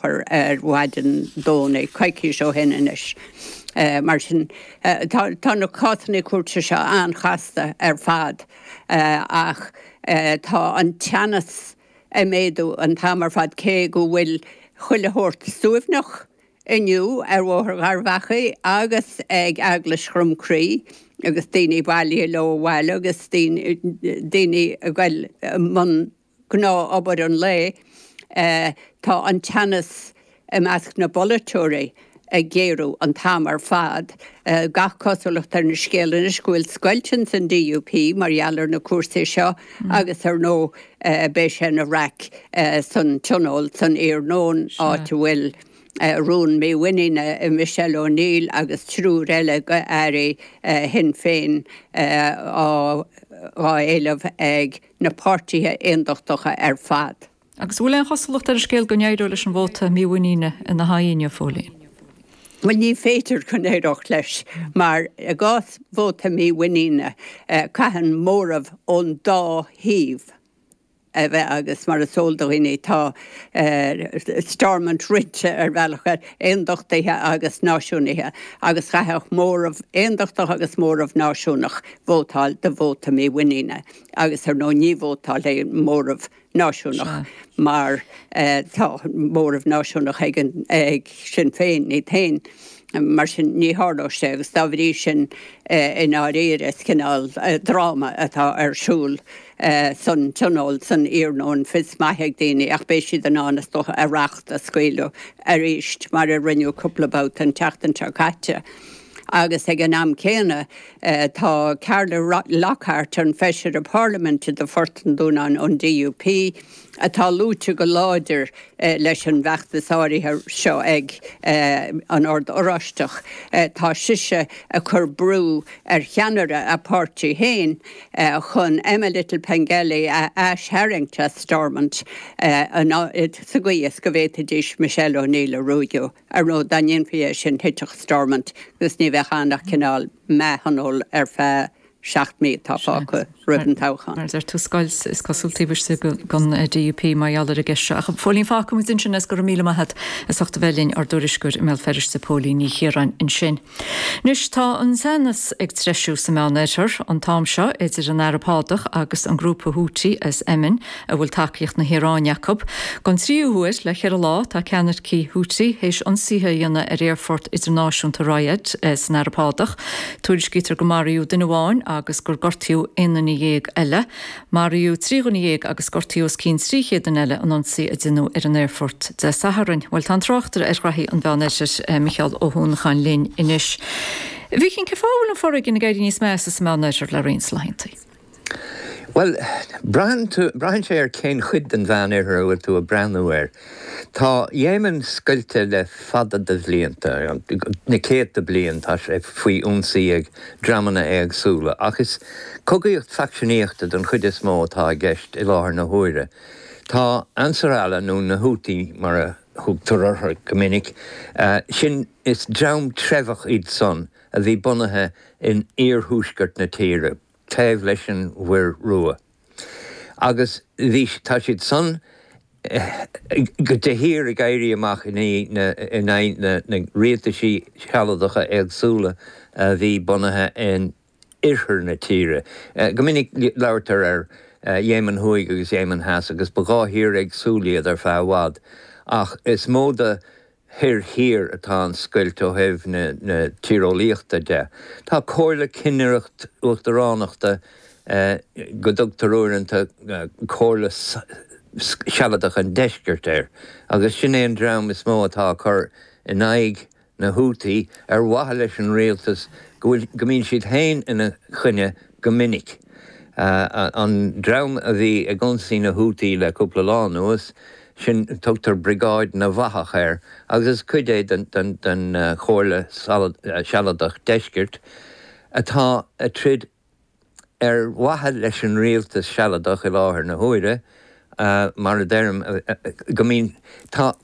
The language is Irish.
chur ar mhaidin Domhnaigh, coicís ó shin anois. Mar sin, tá na cásanna cúirte seo an-chasta ar fad ach tá an teannas ag méadú an t-am ar fad cé go bhfuil chuile shórt suaimhneach inniu ar Bhóthar Gharbhachaidh agus ag Eaglais Dhroim Crí agus daoine ag bailiú leo abhaile agus daoine ag goil i mbun gnáth obair an lae. Tá an teannas i measc na bpolaiteoirí ag géarú an t-am ar fad. Gach cosúlacht ar an scéal anois go bhfuil scoilt ins an DUP mar gheall ar na cúrsaí seo agus ar ndóigh beidh sé ina raic san Tionól san iarnóin áit a bhfuil rún mímhuiníne i Michelle O'Neill agus triúr eile d'Airí Shinn Féin á éileamh ag na páirtithe aondachtacha ar fad. Agus an bhfuil aon chosúlacht ar an scéal go n-éireoidh leis an vóta mímhuiníne ina haghaidh inniu, Phóilín? Bhuel, ní féidir go n-éireodh leis mar, i gcás vóta mímhuiníne, caitheann móramh ón dá thaobh a bheith agus, mar is eol do dhaoine, tá Stormont roinnte ar bhealach ar aondachtaithe agus náisiúnaithe agus chaithfeadh móramh aondachtach agus móramh náisiúnach vótáil do vóta mímhuiníne. agus ar ndóigh ní vótálfaidh aon móramh náisiúnach mar tá móramh náisiúnach ag Sinn Féin iad féin, mar sin ní tharlóidh sé agus dá bhrí sin i ndáiríre is cineál dráma atá ar siúl san Tionól san iarnóin. Fios maith ag daoine ach beidh siad in ann is dócha a racht a scaoileadh arís mar a rinneadh cúpla babhta an tseachtain seo caite agus ag an am céanna, Tá Carla Lockhart, an Feisire Parlaiminte do Phort an Dúnáin ón DUP, atá luaite go láidir leis an bhfeachtas áirithe seo ag an Ord Oráisteach, tá sise ag cur brú ar cheannaire a páirtí féin chun Emma Little-Pengelly a aistharraingt as Stormont sa gcaoi is go bhféadfaidís Michelle O'Neill a ruaigeadh. Ar ndóigh, dá ndéanfaí é sin thitfeadh Stormont agus ní bheadh ann ach cineál meath-thionól ar feadh seacht mí atá fágtha roimh an toghchán. Mar sin tá scoilt, is cosúil taobh istigh den DUP mar gheall ar an gceist seo. Ach Phóilín fágfaidh muid ansin é is go raibh míle maith agat. As ucht a bheith linn, ár dtuairisceoir i mBéal Feirste, Póilín Ní Chiaráin, ansin. Anois tá an teannas ag treisiú sa Meán Oirthear an t-am seo idir an Araib Shádach agus an grúpa Houthi as Éimin a bhfuil tacaíocht na hIaráine acu. Don tríú huair le ceithre lá tá ceannaircigh Houthi théis ionsaithe a dhéanamh ar aerfort idirnáisiúnta Riyadh san Araib Shádach. Tuairiscítear go maraíodh duine amháin agus gur gortaíodh aon duine dhéag eile. Maraíodh trí dhuine dhéag agus gortaíodh os cionn trí chéad duine eile in ionsaí a deineadh ar an aerfort Dé Sathairn. Bhuel, tá an tráchtaire ar ghnoithí an Mheán Oirthir, Micheál Ó hUanacháin linn anois. A Mhichíl, cén fáth a bhfuil an foréigean ag éirí níos measa sa Meán Oirthear le roinnt laethanta? Bhuel, braitheann sé cén chuid den Mheán Oirthear a bhfuil tú ag breathnú air. Tá Yemen scoilte le fada de bhlianta, na céadta bliain, tá sé faoi ionsaí ag dreamanna éagsúla, ach is cogaíocht faicseanaíochta don chuid is mó atá i gceist i láthair na huaire. Tá Ansar Allah, nó na Houthi mar a thugtar orthu go minic, sin is dream treibheach iad san a bhí bunaithe in iarthuaisceart na tíre, taobh leis an Mhuir Rua. Agus bhí, tá siadsan de shíor ag éirí amach in aghaidh na rialtaisí sealadacha éagsúla a bhí bunaithe in oirthear na tíre. Go minic labhraítear ar Yemen Thuaidh agus Yemen Theas agus ba dhá thír éagsúil iad ar feadh i bhfad. Ach is mó de thoir thiar atá an scoilt ó thaobh na tíreolaíochta de. Tá comhairle cinnireacht uachtaránachta go dtugtar uaireanta Comhairle Sealadach an Deiscirt air, agus sin é an dream is mó atá ag cur in aghaidh na Houthi ar mhaithe leis an rialtas go bhfuil go mbíonn siad féin ina choinne go minic. An dream a bhí ag ionsaí na Houthi le cúpla lá anuas, sin, tugtar Briogáid na bhFathach air agus is cuid é den Chomhairle Sealadach Deiscirt atá ag troid ar mhaithe leis an Rialtas Sealadach i láthair na huaire, mar a deirim, go mbíonn. Tá.